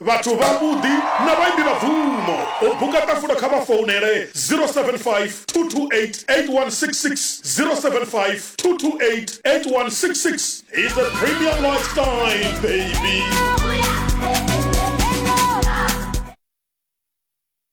Vhathu vhavhuḓi na vhaimbi vha bvumo. U buka ṱafulo kha vha founele 0752288166, 0752288166. He's a premium lifestyle baby.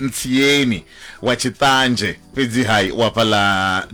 Ntsieni wa Tshiṱanzhe, fhedziha u hafha ḽa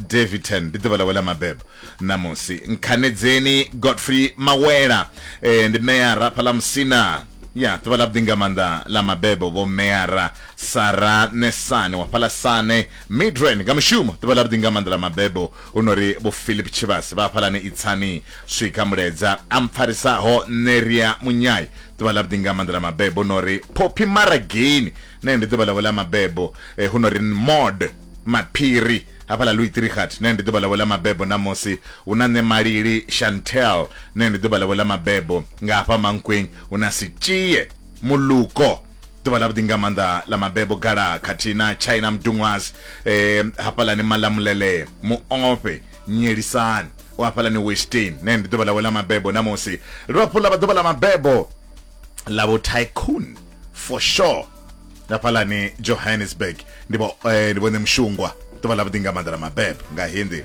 Daveyton, ndi ḓuvha ḽawe ḽa mabebo ṋamusi. Nkhanedzeni Godfrey Mawela, e, ndi meara hafha ḽa Musina. Ya, ḓuvha ḽa vhuḓi nga maanḓa ḽa mabebo vho Meara Sara Nesane wa fhaḽa Sane. Midrand nga mushumo, ḓuvha ḽa vhuḓi nga maanḓa ḽa mabebo hu no ri vho Philip Tshivhase vha hafhaḽani Itsani. Swika Muledza a mpfarisaho Neria Munyai, ḓuvha ḽa vhuḓi nga maanḓa ḽa mabebo no ri phophi marageni nae ndi ḓuvha ḽavho ḽa mabebo eh, hu no ri mod maphiri hafhaḽa louis trihat nae ndi ḓuvha ḽavho ḽa mabebo ṋamusi hu na nṋe malili chantel nae ndi ḓuvha ḽavho ḽa mabebo nga hafha mankweng hu na sitshie muluko ḓuvha ḽa vhuḓi nga maanḓa ḽa mabebo gala khathihi na china mdunwas eh, hafhaḽani malamulelee muofhe nyelisani u hafhalani westin ne ndi ḓuvha ḽawe ḽa mabebo namusi ri vhafhulu ḽa vha ḓuvha ḽa mabebo ḽa vho tycoon for sure hafhalani johannesburg ndi vho eh, ndi vhone mushungwa ḓuvha ḽa vhuḓi nga maḓala mabebo nga hindi